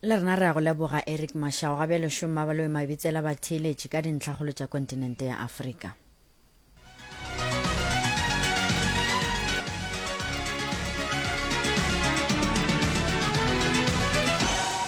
le rena re ya go leboga eric mashao ga bjalo šoma ba loe mabitsela batheeletši ka dintlhagolo tša kontinente ya afrika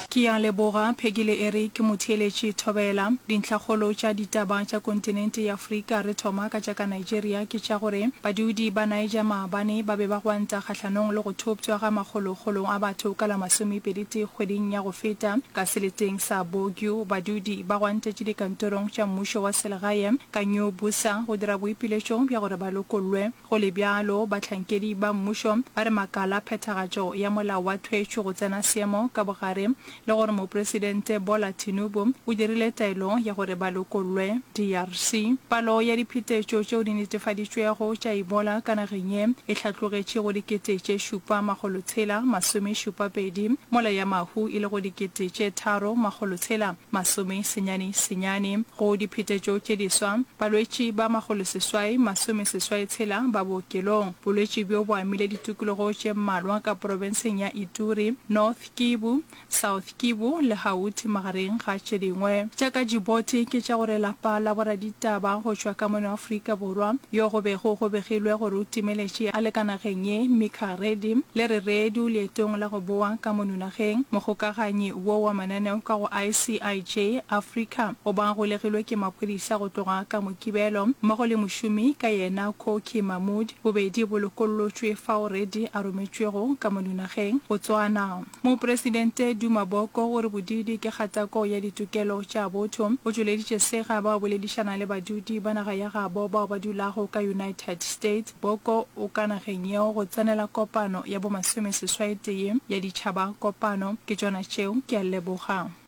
ke ya leboga pheki le eric motheeletši thobela dintlhagolo tša ditaba tša kontinente ya afrika re thoma ka tša ka Nigeria ke tša gore badudi ba Niger maabane ba be ba gwanta kgahlanong le go thoptšwa ga makgolokgolo a batho ka la masomepeditee kgweding ya go feta. Ka seleteng sa Bogio, badudi ba gwantetše dikantorong tša mmušo wa selegae ka New Bussa go dira boipiletšo bja gore ba lokollwe. Go le bjalo, bahlankedi ba mmušo ba re makala a phethagatšo ya molao wa thwetšwe go tsena seemo ka bogare le gore Mopresidente Bola Tinubu o dirile taelo ya gore ba lokollwe DRC. Palo ya diphetetšo tšeo di netefaditšwego tša Ebola ka nageng ye e hlatlogetše go dikete tše šupa makgolo tshela masome šupa pedi, mola ya mahu e lego dikete tše tharo makgolo tshela masome senyane senyane. Go diphetetšo tše diswa, balwetši ba makgolo seswai masome seswai tshela ba bookelong. Bolwetši bjo bo amile ditikologo tše mmalwa ka porofenseng ya Ituri, North, Kivu, South Kivu, le Hauti magareng ga tše dingwe. Tša ka Djibouti ke tša gore lapa la boraditaba go tšwa ka mono Afrika Borwa yo go bego go begilwe gore o timeletše a le ka nageng ye, Mika Reddy, le re redu leetong la go boa ka mono nageng. Mogokaganyi wo wa mananeo ka go ICIJ Africa o ba golegilwe ke maphodisa go tloga ka Mokibelo mmogo le mošomi ka yena Koki Mahmoud. Bobedi bo lokollotšwe fao Reddy a rometšwego ka mo dinageng Botswana. Mopresidente Duma Boko o re bodiidi ke kgatako ya ditokelo tša botho. O tšweleditše sega ba o boledišana le badudi ba naga ya gabo bao ba dulago ka United States. Boko o ka nageng yeo go tsenela kopano ya bo masome seswaetee ya ditšhaba kopano. Ke tšona tšeo, ke a leboga.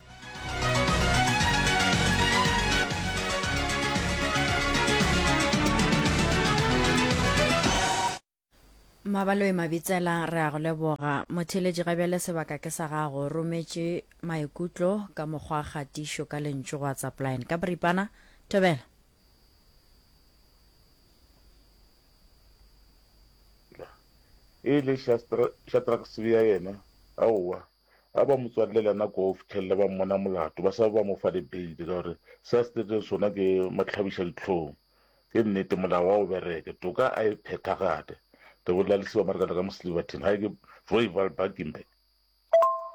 mabaloe mabitsela re a go leboga motheletši ga bjale sebaka ke sa gago rometše maikutlo ka mokgwa kgatišo ka lentšu go whatsapline ka boripana thobela e le shatraksebea yena aowa A ba mo tswalele yena koo go fihlelele ba mmona molato, ba sa be ba mo fa le beile, ka gore se a se dirileng sona ke matlhabišadihlong. Ke nnete, molao ga o bereke, toka a e phethagate, re bolela le Seamerikana ka mo Silverton, ga e ke Royval Bakenberg.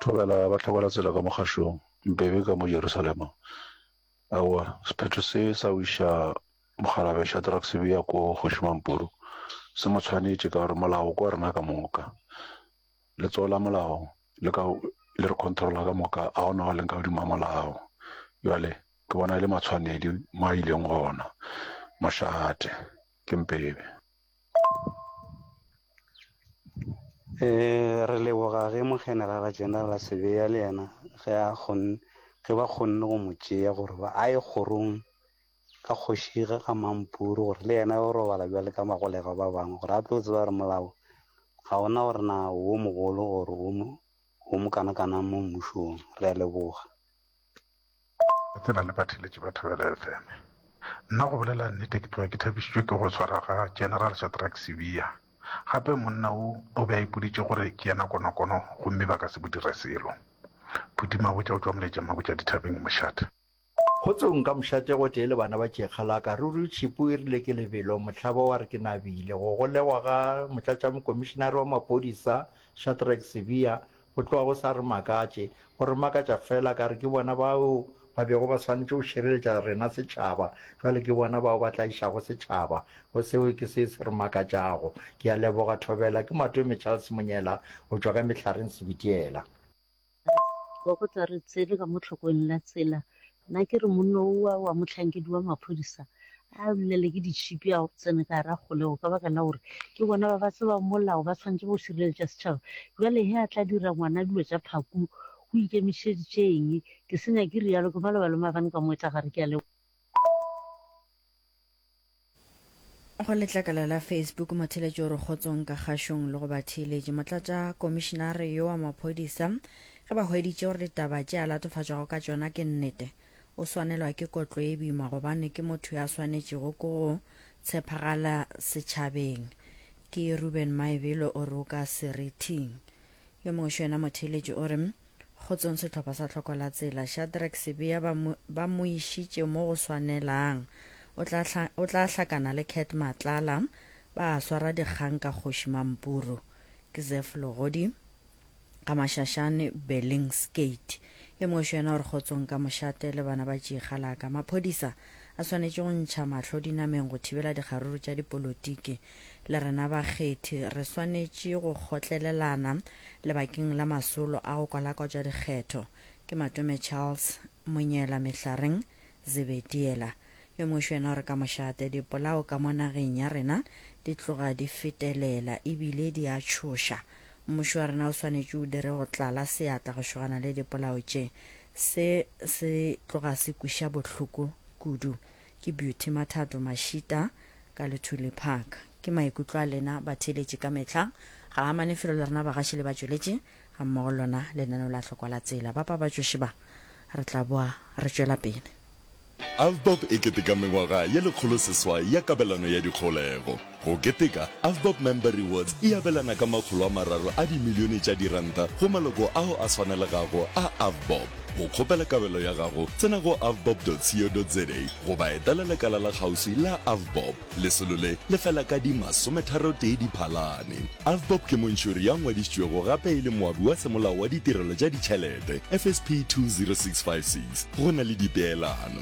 Thobela ba hlakola tsela ka mo kgašong, Mbebe ka mo Jerusalema. Aowa, sephetho se sa go iša Mokgalabje Shadrack Sibiya koo Kgoši Mampuru se mo tshwanetše, ka gore molao ke wa rena ka moka. Letsogo la molao le ka le re controla ka moka, a gona go leng ka godimo a molao. Jale ke bona e le matshwanedi mo a ileng gona, mošate ke mpebe. E, re leboga ge mogenerala General Sibiya le yena ge a kgonne ge ba kgonne go mo tšea gore ba a ye kgorong ka kgoši ge ga mampuru gore le yena o robala bjale ka bagolegwa ba bangwe gore a tlo tseba gore molao ga ona gore na wo mogolo gore wo mo wo mo kana kana mo mmušong re a leboga Re tsena le batheletši ba Thobela FM. Nna go bolela nnete ke tloga ke thabišitšwe ke go swara ga General Shadrack Sibiya. Gape monna wo o be a ipoditše gore ke yena konokono gomme ba ka se mo dire selo. Phuti Mabotja o tšwa Moletšamabotja Dithabeng Mošate. Go tsogong ka mošate gotee le bana ba Tšeekgalaka, ruri Tšhipu e rile ke lebelo, Mohlaba wa re ke nabile go golegwa ga Motlatšamokomišinare wa Maphodisa, Shadrack Sibiya, go tloga go sa re makatše. Go re makatša feela ka re ke bona bao ba bego ba swanetše go šireletša rena setšhaba, bjale ke bona bao ba tlaišago setšhaba. Go seo ke se se re makatšago. Ke a leboga, Thobela. Ke Matome Charles Monyela go tšwa ka Mehlareng Sebitiela. Wa go tla re tsere ka mo tlhokong la tsela. Nna ke re monno owa wa mohlankedi wa maphodisa a lulele ke ditšhipi a tsene ka gare a kgolego ka baka la gore ke bona ba ba tsebang molao ba tshwanetse go šireletša setšhaba. Bjale he a tla dira ngwana dilo tša phaku o ikemišeditše eng? Ke se nyake rialo ke maloba le maabane ka moetla gare ke a leboga. Go letlakala la Facebook, motheeletši o re kgotsong ka kgašong le go batheeletši. Motlatša komišinare yo wa maphodisa ge ba hweditše gore ditaba tše a latofatšwago ka tšona ke nnete, o swanelwa ke kotlo e boima gobane ke motho ya swanetšego ke go tshepagala setšhabeng. Ke Ruben Maebelo o re o ka serithing. Yo mongwe xo yena motheeletši o re, Kgotsong sehlopha sa Tlhoko la Tsela. Shadrack Sibiya ba mo, ba mo išitše mo go swanelang. O tla, hla, o tla hlakana le Cat Matlala. Ba a swara dikgang ka Kgoši Mampuru. Ke Zeph Logodi ka Mashashane, Bellings Gate. E mošo yena o re kgotsong ka mošate le bana ba tšiegalaka. Maphodisa a swanetše go ntšha mahlo dinameng go thibela dikgaruru tša dipolotiki. Le rena bakgethi re swanetše go kgotlelelana lebakeng la masolo a go kwalakwatša dikgetho. Ke Matome Charles, Monyela Mehlareng, Zebediela, yo mošwi yena o re ka mošate, Dipolao ka mo nageng ya rena di tloga di fetelela e bile di a tšhoša. Mmušo wa rena o swanetše o dire go tlala seatla go šogana le dipolao tše. Se se tloga se kweša bohloko kudu. Ke Beauty Mathato Mashita ka Luthuli Park. Ke maikutlo a lena batheeletši ka mehla. Ga a amane felo le rena bagaši le batšweletši gammogo le lona lenaneo la Hlokwa la Tsela. Ba pabatšoši ba, re tla boa re tšwela pele. Avbob e keteka mengwaga ye lekgolo seswai ya kabelano ya dikgolego. Go keteka, Avbob Member Rewards e abelana ka makgolo a mararo a dimilione tša diranta go maloko ao a swanelegago a Avbob. Go kgopela kabelo ya gago, tsena go avbob.co.za goba etela lekala la kgauswi la Avbob. Lesolo le le fela ka di masometharotee Diphalane. Avbob ke montšhori ya ngwadišitšwego gape e le moabi wa semolao wa Ditirelo tša Ditšhelete, FSP 20656. Go na le dipeelano.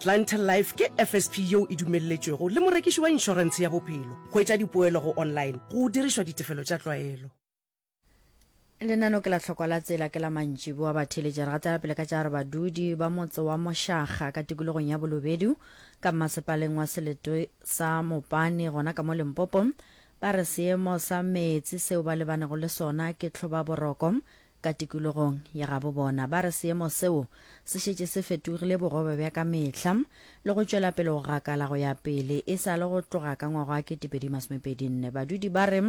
Clientele Life ke FSP yeo e dumelletšwego le morekiši wa inšorentshe ya bophelo go etša dipoelo go online go dirišwa ditefelo tša tlwaelo. Lenano ke la hlokwa la tsela ke la mantšiboa ba theletša. Re gatela pele ka tša re badudi ba motse wa Mošaga ka tikologong ya Bolobedu ka mmasepaleng wa seletoe sa Mopane gona ka mo Limpopo ba re seemo sa meetse seo ba lebanego le sona ke tlhobaboroko Ka tikologong ya gabo bona ba re seemo seo se šetše se fetogile borobe bja ka mehla le go tšwela pele go gakala go ya pele e sa le go tloga ka ngwaga wa 2024. Badudi ba re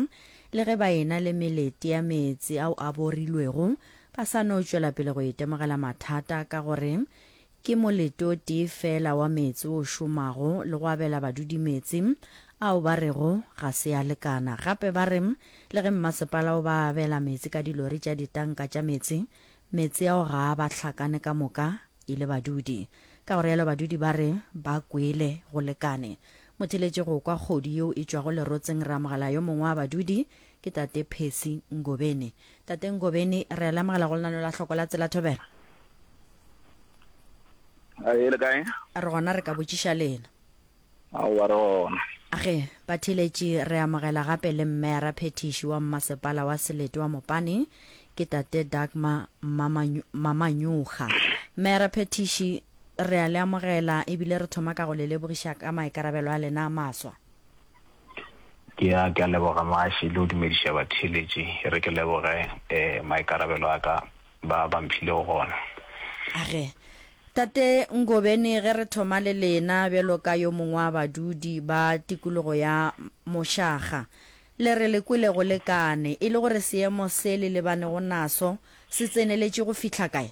le ge ba ena le melete ya meetse ao a borilwego ba sa no tšwela pele go itemogela mathata ka gore Ke molete o tee feela wa meetse o šomago le go abela badudi meetse ao ba rego ga se a lekana. Gape ba re le ge mmasepala o ba abela meetse ka dilori tša ditanka tša meetse, meetse ao ga a ba hlakane ka moka e le badudi. Ka go realo badudi ba re ba kwele go lekane. Motheletše go kwa kgodu yeo e tšwago lerotseng ramogala yo mongwe wa badudi ke tate Percy Ngobeni. Tate Ngobeni, re a le amogela go lenano la hloko la Tsela Thobela. A e le kae? Re gona re ka botšiša lena. A o ba re gona. Age, Bathiletši re amogela gape le mme ra phethiši wa mmasepala wa Selete wa Mopane, ke Tate Dagmar Mamanyuga. Mme ra phethiši, re a le amogela ebile re thoma ka go le lebogiša ka maikarabelo a lena a maswa. Ke a, ke a leboga Maashe le go dumediša batheeletši. E re ke leboge um maikarabelo a ka ba ba mphilego gona. Age. Tate Ngobeni, ge re thoma le lena bjalo ka yo mongwe wa badudi ba tikologo ya Moshaga, le re le kwele go lekane, e le gore seemo se le lebanego naso se tseneletše go fihla kae?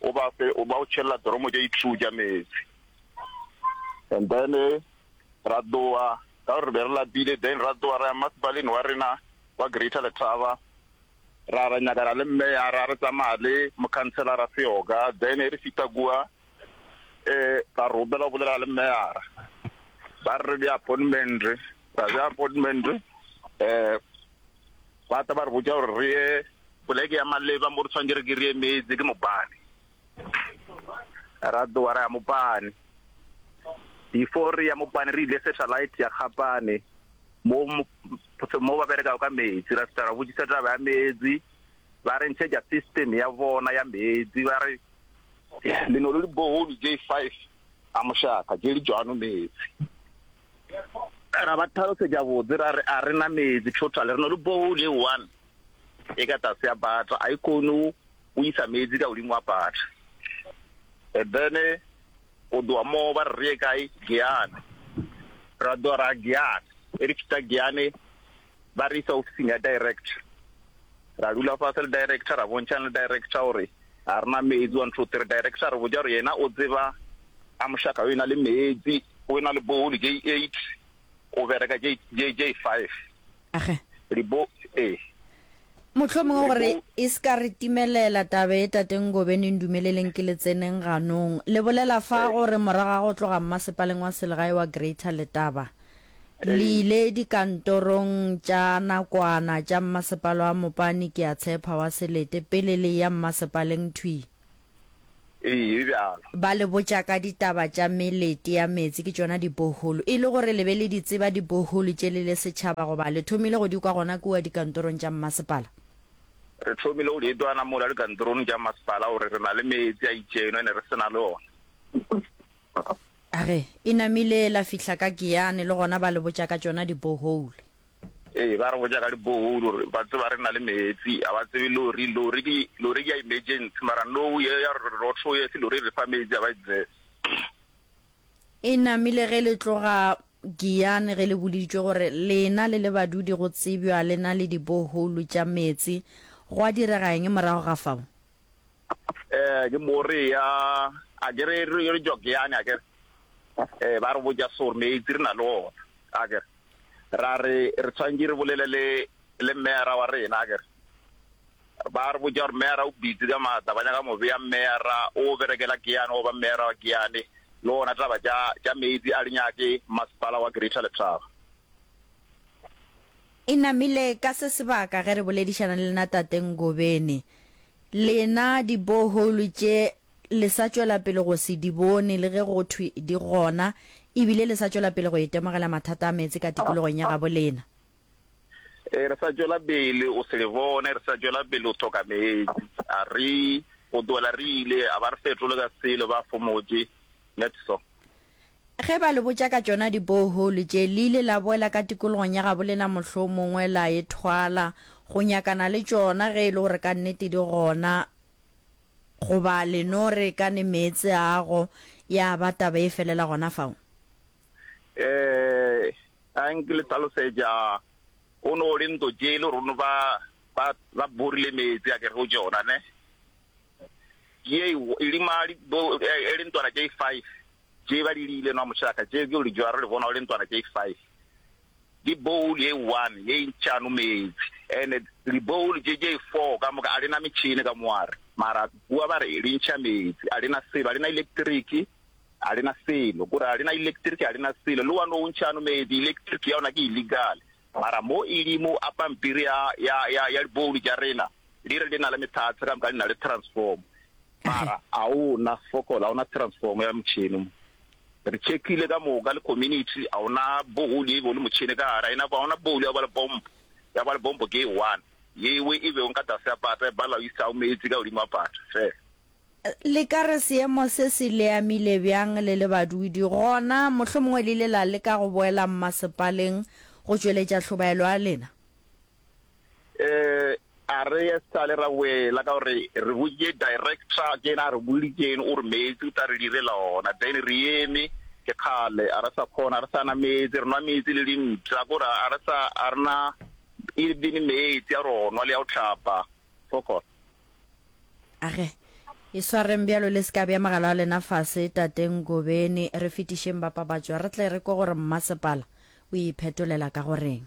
o ba fe, o ba o tšhelela doromo tša di-true tša meetse. And then ra tloga ka gore re be re lapile, then ra tloga ra ya masepaleng wa rena wa Greater Letaba, ra ra nyakana le mmeya, ra re tsamaya le mokhanselara Seoka, then e re fihla kua um ra robela go bolela le mmeyara, ba re re bje appointment, ra bje appointment um ba tla ba re botša gore re ye Poleke ya maleba mo re tshwanetse re ke re emetse ke Mopane. Ra tsoga ra ya Mopane. Before re ya Mopane re ile Satellite ya Kgapane mo mo ba berekago ka meetse. Ra fihla ra botsisa taba ya meetse, ba re ntshetša system ya bona ya meetse. Ba re le no le di-borehole tše five ka mošaka tše di tšwano meetse. Ra ba tlhalosetša botse ra re a re na meetse total, re no le borehole e one e ka tlase ya butter a e kone o isa metsi ka godimo wa butter and then go doa mo ba re kae giane ra doa ra giane e re fita giane ba re isa ofising ya director ra dula fa se le director ra bontšhang le director gore ga rena metsi one two three director re botsa gore yena o tseba a mošaka o e na le metsi o e na le bohole j eight o bereka j j five Age. Re bo, ee. Mohlomongwe gore e se ka re timelela taba ye, Tate Ngobeni, ndumeleleng ke le tseneng ganong. Le bolela fa gore morago ga go tloga mmasepaleng wa selegae wa Greater Letaba, le ile dikantorong tša nakwana tša mmasepala wa Mopani, ke a tshepa, wa Selete, pele le eya mmasepaleng thwi. Ee, e bjalo. Ba le botša ka ditaba tša melete ya meetse, ke tšona diboholo. E le gore le be le di tseba diboholo tše le le setšhaba goba le thomile go di kwa gona kua dikantorong tša mmasepala? Re thomile go di etwana mola dikantorong tša mmasepala gore re na le meetse a itšeno e ne re se na le ona. Ge e namile la fihla ka Giyane le gona ba le botša ka tšona diboholo. Ee, ba re botša ka di-borehole gore ba tseba re na le meetse, ga ba tsebe lori. Lori ke lori ke ya emergency mara no ye ya rotho ye se lori e re fa meetse, ga ba e tsebe. E namile ge le tloga Giyani ge le boleditšwe gore lena le le badudi go tsebjwa le na le di-borehole tša meetse. Gwa direga eng morago ga fao? Ee, ke mo re ya a ke re re tšwa Giyani a ke re ba re botša so gore meetse re na le ona a ke re. ra re re tshwanetse re bolele le le mmeyara wa rena ke ba re botša gore mmeyara o bitse ka maatla ba nyaka mobe ya mmeyara o berekela keane goba mmeyara wa keane le ona taba tša tša meetse a linyake masepala wa greater letraba e namile ka se sebaka ge re boledišana le lena tate ngobeni lena dibohole tše le sa tšwela pele go se di bone le ge go thwe di gona, e bile le sa tšwela pele go itemogela mathata a meetse ka tikologong ya gabo lena. E, re sa tšwela pele o se le bone, re sa tšwela pele o thoka meetse. A re go tlohela re ile, a ba re fetole ka selo, ba fomotše. That's so. Ge ba le botša ka tšona di-borehole tše, le ile la boela ka tikologong ya gabo lena mohlomongwe la e thwala, go nyakana le tšona ge e le gore ka nnete di gona, Goba le no re ka ne meetse ago ya ba taba e felela gona fao? Ee, a nke le hlalosetša. Go no le nto tše le rune ba, ba, ba borile meetse a ke re go tšona, ne? Ye e, e le ma, li, bo, e, e le ntwana tše five tše ba di liile nwa mošaka, tše ke le jwaro le bona o le ntwana tše five. Ke bowl ye one ye ntšano meetsi and di bowl tše tše four ka moka a di na metšhini ka mo are mara bua ba re di ntšha meetsi a di na selo a di na electric a di na selo gore a di na electric a di na selo le one o ntšhano meetsi electric ya ona ke illegal mara mo e le mo a pampiri ya ya ya ya di bowl tša rena di re di na le methatse ka moka di na le transform mara a ona fokola a ona transform ya motšhini mo Re tšhekile ka moka le community, a ona bohole ye e bego le motšhene ka gare, a ena kwa, a ona bohole ya kwa le pompo, ya kwa le pompo ke e one, ye we e bego ka tlase ya pata, e bala o isa o meetse ka godimo wa pata, fela. Le ka re seemo se se le amile bjang le le badudi, gona mohlomongwe le ile la leka go boela mmasepaleng go tšweletša hlobaelo ya lena? eh a re ya sale ra wela ka gore re botse director ke ena a re bolitseng o re meetse o tla re direla ona then re eme ke kgale a re sa kgona a re sa na meetse re nwa meetse le dintla kore a re sa a rena e bene meetse a ronwa le ya go tlhapa fokot age e swareng bjalo le seka bja magalo a lena fase tateng gobeni re fetišeng bapabatšwa re tle re kwe gore mmasepala o iphetolela ka goreng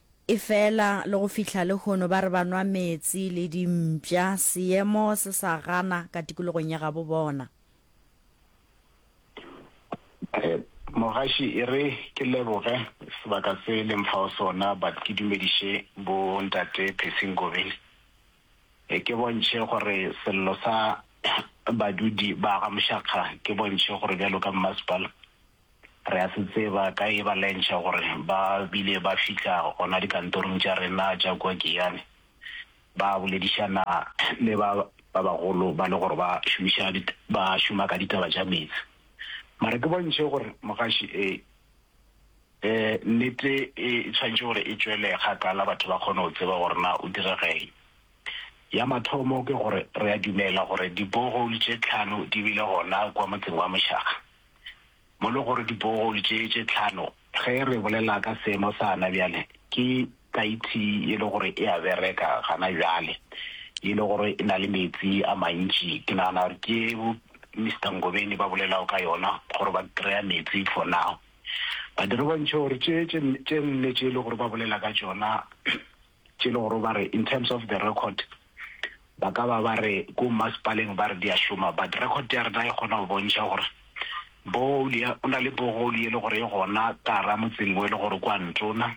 Efela le go fihla lehono ba re ba nwa meetse le dimpša, seemo se sa gana ka tikologong ya gabo bona. Ee, mogaši e re ke leboge sebaka se le mphago sona but ke dumediše bo Ntate Percy Ngobe e ke bontšhe gore sello sa badudi ba ga Moshakga ke bontšhe gore bjalo ka Mmasepala Re a se tseba ka e ba lentšha gore ba bile ba fihla gona dikantorong tša rena tša kua Giyani ba boledišana le ba ba bagolo ba le gore ba šomiša ba šoma ka ditaba tša meetse. Mara ke bontšhe gore mogaši e e nnete e tshwanetše gore e tšwele kgakala batho ba kgone go tseba gore na o diregeng. Ya mathomo ke gore re a dumela gore di borehole tše tlhano di bile gona kua motseng wa Mošaga. mo le gore dibohole tše tše tlhano, ge re bolela ka seemo sa na bjale, ke kaiti ye le gore e a bereka gana bjale, ye le gore e na le meetse a mantši, ke nagana gore ke ye bo Mister Ngobeni ba bolelago ka yona, gore ba kry-a meetse for now. But re bontšhe gore tše tše nne tše le gore ba bolela ka tšona, tše le gore ba re in terms of the record ba ka ba ba re ko mmasepaleng ba re di a šoma but record ya rena e kgona go bontšha gore borehole ya o na le borehole ye le gore e gona kara motseng o e le gore kwa ntona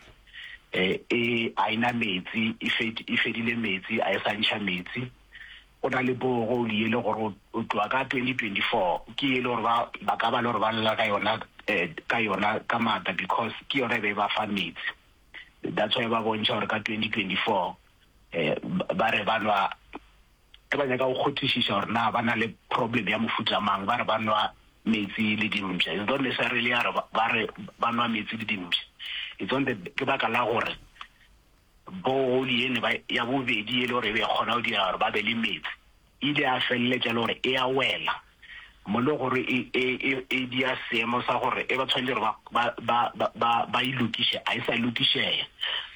e e a ina metsi e fed e fedile metsi a e sa ntšha metsi o na le borehole ye le gore o tloa ka 2024 ke ye le gore ba ba ka ba le gore ba lela ka yona ka yona ka matla because ke yona e be e ba fa metsi that's why ba bontšha gore ka 2024 ba re ba nwa ge ba nyaka go kgothišiša gore na ba na le problem ya mofuta mang ba re ba nwa metsi le dimpša is not necessarily ya re ba re ba nwa metsi le dimpša it's on the ke baka la gore bohole ene ya bobedi e le gore e be kgona go dira gore ba be le metsi ile ya feleletša e le gore e a wela mo le gore e, e, e, e dia seemo sa gore e ba tshwanetse gore ba, ba, ba, ba, ba e lokiše, a e sa lokišeya.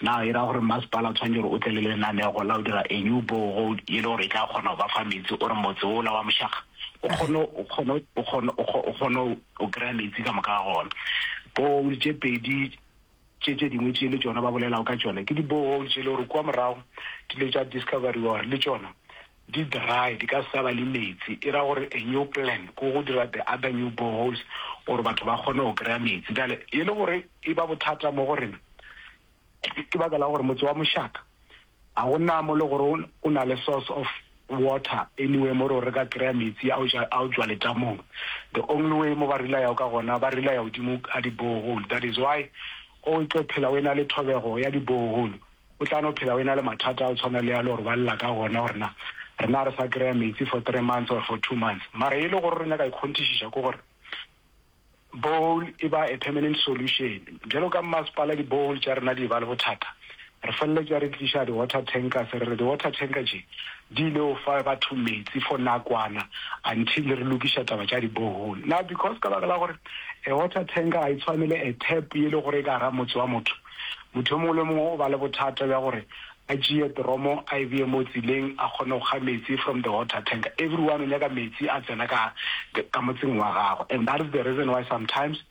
Na e ra gore mmasepala o tshwanetse gore o tle le lenanego la o dira a new borehole e le gore e tla kgona go ba fa metsi, o re motse ola wa Mošaga o kgone o kgone o kgone o kgone o kry-a metsi ka moka ga gona borehole tše pedi Tše tše dingwe tše le tšona ba bolelago ka tšona ke di-borehole tšele gore kua morago di ile tša discoverywa gore le tšona di dry, di ka sa ba le meetse. E ra gore a new plan ke go dira the other new boreholes gore batho ba kgone go kry-a meetse. Bjale e le gore e ba bothata mo go rena ke baka la gore motse wa Moshaka, A go na mo le gore o, o na le source of water anywhere mo re o re ka kry-a metsi a o ja, a o tšwa letamong? The only way mo ba relayago ka gona, ba relaya godimo ga di-borehole. That is why o tlo phela o ena le thobego ya di-borehole, o tla no phela o ena le mathata a go tshwana le a le gore ba lla ka gona gore na re na re sa kry-a metsi for three months or for two months. Mara e le gore o re nyaka ikgonthišiša ke gore, Bowl e ba a permanent solution. Bjalo ka mmasepala di bowl tša rena di e ba le bothata, re feleletša re tliša di water tankers, re re di water tanker tše di ile o fa batho metsi for nakwana until re lokiša taba tša di borehole. Now because ka baka la gore a water tanker ga e tshwane le a tap ye le gore e ka gara motse wa motho, motho yo mongwe le yo mongwe o ba le bothata bja gore A tšee dromo a e bee mo tseleng a kgone go kga metsi from the water tank. Everyone o nyaka metsi a tsena ka ka motseng wa gagwe and that is the reason why sometimes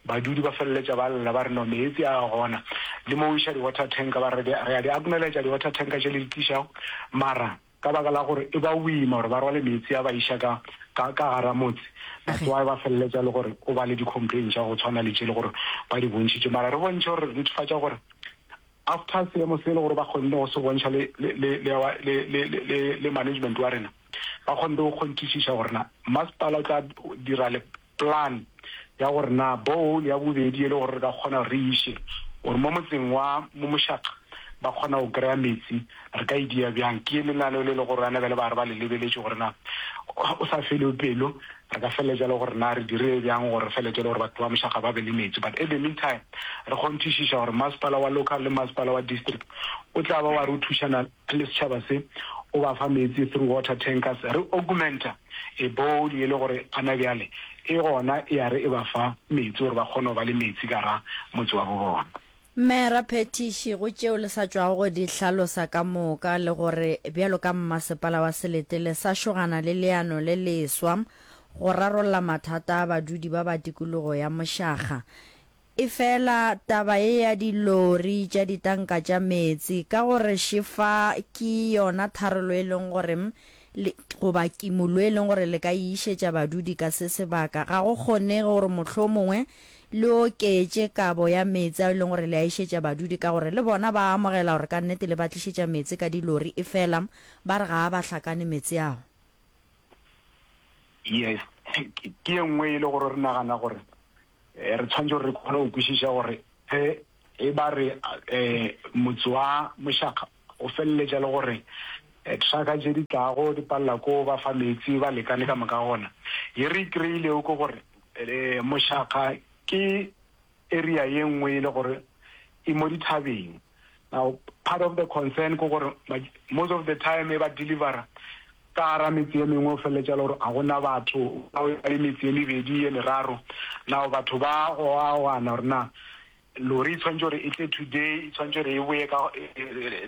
badudi ba feleletša ba lla ba re no meetsi a gona le mo o iša di water tank ba re re a di acknowledge di water tank tše le di tlišago mara ka baka la gore e ba boima gore ba rwale meetsi a ba iša ka ka ka gara motse that's why ba feleletša le gore o ba le di complain tša go tshwana le tše le gore ba di bontšhitše mara re bontšhe gore re netefatša gore After seemo se e le gore ba kgonne go se bontšha le, le, le, le, our, le, le, le, le, le management wa rena, ba kgonne go kgonthišiša gore na masepala o tla dira le plan ya gore na borehole ya bobedi e le gore re ka kgona gore re iše gore mo motseng wa Momošaqa ba kgona go kry-a metsi Re ka e dia bjang? Ke lenaneo le le go rana bjale ba re ba le lebeletše gore na o sa felwe pelo. Re ka feleletša le gore na re dire bjang gore re feleletše le gore batho ba mošaga ba be le meetse. But at the meantime re kgonthišiša gore masepala wa local le masepala wa district o tla ba wa re o thušana le setšhaba se o ba fa meetse through water tankers. Re augmenta a borehole ye le gore ana bjale e gona e ya re e ba fa meetse gore ba kgone go ba le meetse ka ra motse wa bo bona. Mme Raphethiši, go tšeo le sa tšwago go di hlalosa ka moka, le gore bjalo ka mmasepala wa Selete le sa šogana le leano le leswa go rarolla mathata a badudi ba ba tikologo ya Mošaga. Efela taba ye ya dilori tša ditanka tša meetse ka go re šefa ke yona tharollo e leng gore Le, goba kimollo e leng gore le ka e išetša badudi ka se sebaka. Ga go kgonege gore mohlomongwe le oketše kabo ya meetse ao e leng gore le a išetša badudi, ka gore le bona ba a amogela gore ka nnete le ba tlišetša meetse ka dilori, efela ba re ga a ba hlakane meetse ao. Yes, ke, ke e nngwe e le gore re nagana gore E re tshwanetse gore re kgone go kwešiša gore ge e ba re e, motse wa mošaka o feleletša le gore e, traka tše di tlago di palela ko ba fa meetse ba lekane ka moka gona. Ye re ikreilego ke gore e, mošaka ke area ye nngwe e le gore e mo dithabeng. Now part of the concern ke gore most of the time e ba delivera ka gara metse ye mengwe o feleletša le gore ga gona batho ba le metse ye mebedi ye meraro now batho ba goagoana gore na lori e tshwanetse gore e tle today e tshwanetse gore e boye ka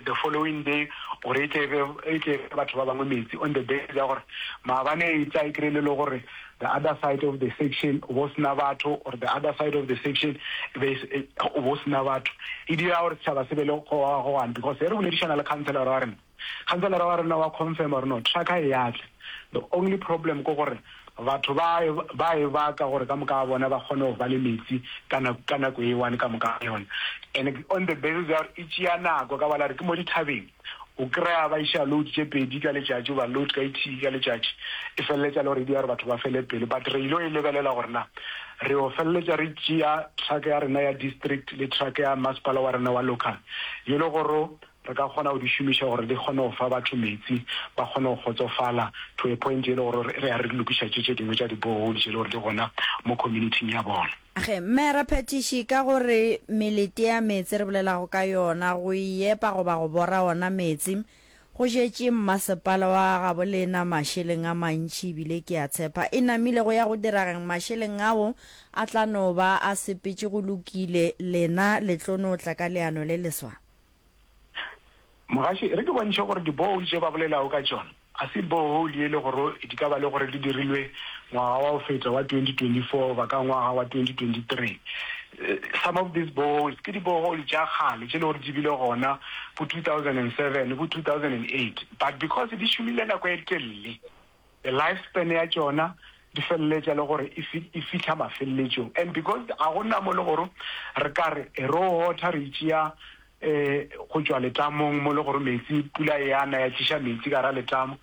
the following day gore e tle e tle batho ba bangwe metse on the basis ya gore maabane e tsa e kry-e le le gore The other side of the section, o bo se na batho, or the other side of the section, e be e, o bo se na batho. E dira gore setšhaba se be le go gogoana, because ge re boledišana le councillora wa rena, councillora wa rena wa confirma gore no, truck e ya tla. The only problem ke gore batho ba e, ba e baka gore ka moka ga bona ba kgone go ba le metsi ka nako, ka nako e one ka moka ga yona. And on the basis ya gore e tšea nako, ka bala re ke mo dithabeng, O kry-a ba iša load tše pedi ka letšatši goba load ka ithii ka letšatši, e feleletša e le gore e dira gore batho ba fele pelo. But re ile go e lebelela gore na re yo feleletša re tšea truck ya rena ya district le truck ya masepala wa rena wa local e le gore re ka kgona go di šomiša gore di kgone go fa batho metsi ba kgone go kgotsofala to a point e le gore re ya re lokiša tše tše dingwe tša di-borehole tše e le gore di gona mo community-ing ya bona. Ge mme raphethiši ka go re melete ya meetse re bolelago ka yona go e epa goba go bora ona meetse, go šetše mmasepala wa gabolena mašeleng a mantši ebile ke a tshepa e namile go ya go dirageng mašeleng ao a tla no ba a sepetše go lokile lena le tlo no tla ka leano le leswa. Mogaši, re ke bontšhe gore di-borehole tše ba bolelago ka tšona ga se borehole ye e le gore di ka ba le gore di dirilwe ngwaga wa go feta wa 2024 goba ka ngwaga wa 2023. Some of these boreholes ke di-borehole tša kgale tše e le gore di bile gona bo 2007, bo 2008 but because di šomile nako e telele, the life span ya tšona di feleletša le gore e fihla mafeleletšong and because ga go nna mo le gore re ka re e ro hotha re itšea go tšwa letamong mo le gore metsi pula e ana ya tliša metsi ka ra letamo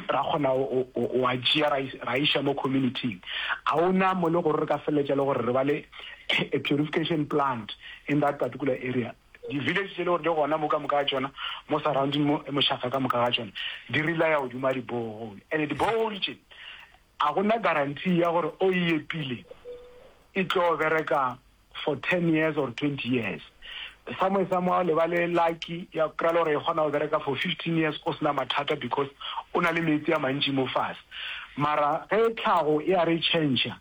ra kgona wa tšea ra iša mo communityng ga o na mo le gore re ka feleletša le gore re ba le a purification plant in that particular area Di village tše le gore di gona mo ka moka ga tšona mo surrounding mo mošafa ka moka ga tšona di relaya godimo ga di borehole and di borehole tše a gona guarantee ya gore o e epile e tlo bereka for ten years or twenty years somewhere somewhere le ba le lucky ya kry le gore e kgona go bereka for fifteen years o sena mathata because o na le metsi a mantši mo fase mara ge tlhago e a re changer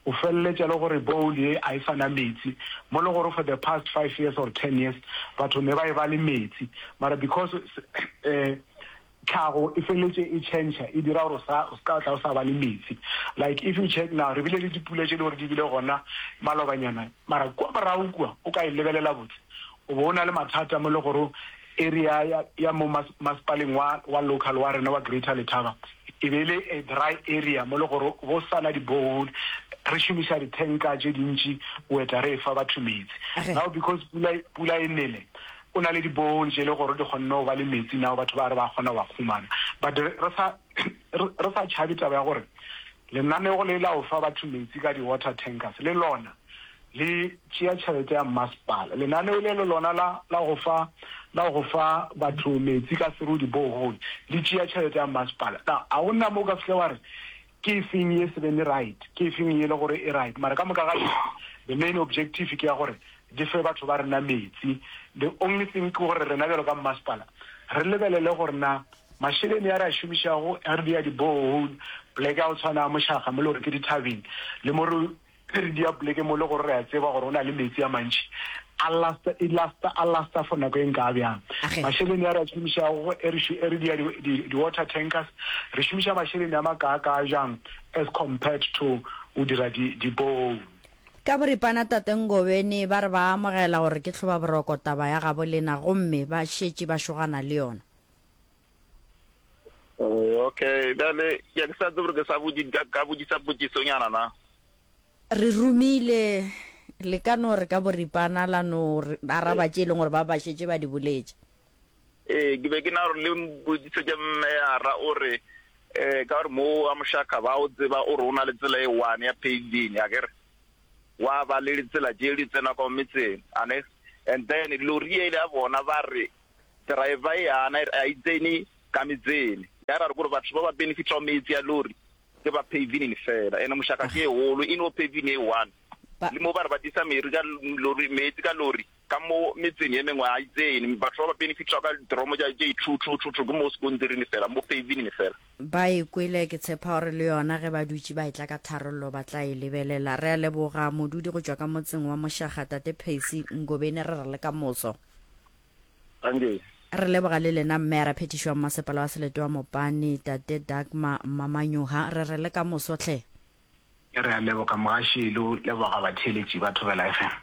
O feleletša le gore bowl ye a e sa na metsi, mo le gore for the past five years or ten years batho ne ba e ba le metsi, mara because tlhago e feleletše e change e dira gore o sa o ska tla o sa ba le metsi. Like if you check now re bile le dipula tše le gore di bile gona malobanyana, mara kwa morago kwa o ka e lebelela botse o bo o na le mathata mo le gore Area ya ya mo mas, masepaleng wa, wa local wa rena wa Greater Letaba e be e le a dry area mo le gore go sana di borehole, re šomiša di tanka tše dintši go etla re efa batho metsi. Ge. Now because pula, pula e nele, go na le di borehole tše le gore di kgonne go ba le metsi now batho ba re ba kgona go a khumana. But re, re sa, re, re sa tšhabe taba ya gore lenanego le la go fa batho metsi ka di water tankers le lona Le tšea tšhelete ya mmasepala. Lenaneo le le lona la, la go fa, la go fa batho meetse ka seru, di-borehole, le tšea tšhelete ya mmasepala. Na, a go na mo o ka fihla wa re, Ke efeng ye se beng e right? Ke efeng ye e le gore e right? Mara ka moka ga yona, the main objective ke ya gore di fe batho ba rena meetse. The only thing ke gore rena bjalo ka mmasepala re lebelele gore na mašeleni a re a šomišago ge re dia di-borehole, poleke ya go tshwana ya Mošaga mo le gore ke dithabeng, le mo re Ge re dia poleke mo e le gore re a tseba gore go na le meetse a mantši, a lasta, e lasta, a lasta for nako e nkaa bjang? Age. Mašeleni a re a šomišago go e re šo, e re dia di, di, di-water tankers, re šomiša mašeleni a makaakaa bjang as compared to go dira di, di-borehole? Ka boripana Tate Ngobeni ba re ba amogela gore ke tlhobaboroko taba ya gabo lena gomme ba šetše ba šogana le yona. Eh, okay bjale ke ke sa tsebe gore ke sa bodi- ka- ka bodisa potsisonyana na re romile le ka no re ka boripana la no re- araba tše e leng gore ba ba šetše ba di boletše ee ke be ke na gore le mpotsiso ke mmeara o re um ka gore mo wa mošaka ba o tseba o re o na le tsela e one ya painting a kere wa ba le ditsela tše di tsena kwa metseng ane and then lori ele ya bona ba re Driver eana ere a itseni ka metseni, yare are kore batho ba ba benefitao metsi a lori ke ba pavinin fela ene moshaka ke eholo ino pavin e one le mo bare ba disa meri ka lori metsi ka lori ka mo metseni e mengwe a itseni batho ba ba benefitao ka dromo ja je two two two two ke mo skontirini fela mo pavinin fela. Ba e kwele ke tshepa gore le yona ge ba dutše ba etla ka tharollo ba tla e lebelela. Re a leboga modudi go tšwa ka motseng wa Moshaga Tate Percy Ngobeni re re le ka moso. Thank Re leboga le lena mme a ra phetišwa mmasepala wa Seletoa Mopane tate Dagmar Mmamanyoha re re le ka moso tlhe. Re a leboga mogaši lo leboga batheeletši ba Thobela FM.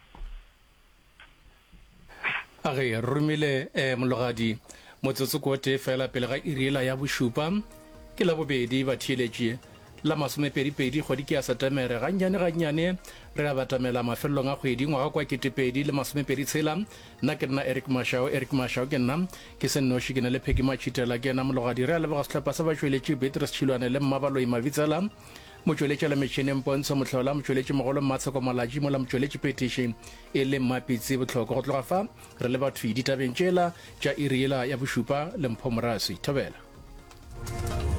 A re romile eh mologadi. Motsotso ko tee fela pele ga iri ela ya bošupa ke la bobedi batheeletši. La masomepedipedi kgwedi ke ya Setemere. Gannyane gannyane re a batamela mafelelong a kgwedi. Ngwaga kwa ketepedi le masomepedi tshela. Nna ke nna Eric Mashao, Eric Mashao ke nna. Ke se nnoši, ke na le Peggy Matšhitela, ke ena mologadi. Re a leboga sehlopha sa batšweletši, Beatrice Tšhilwane le Mmabaloyi Mabitsela, motšweletšela metšhineng Pontsho Mohlola, motšweletšimogolo Mmatsheko Malatji, mola motšweletšiphethiši e le Mmapitsi Botlhoko. Go tloga fa, re le bathwi ditabeng tšela tša iri yela ya bošupa. Lempho Morasi. Thobela.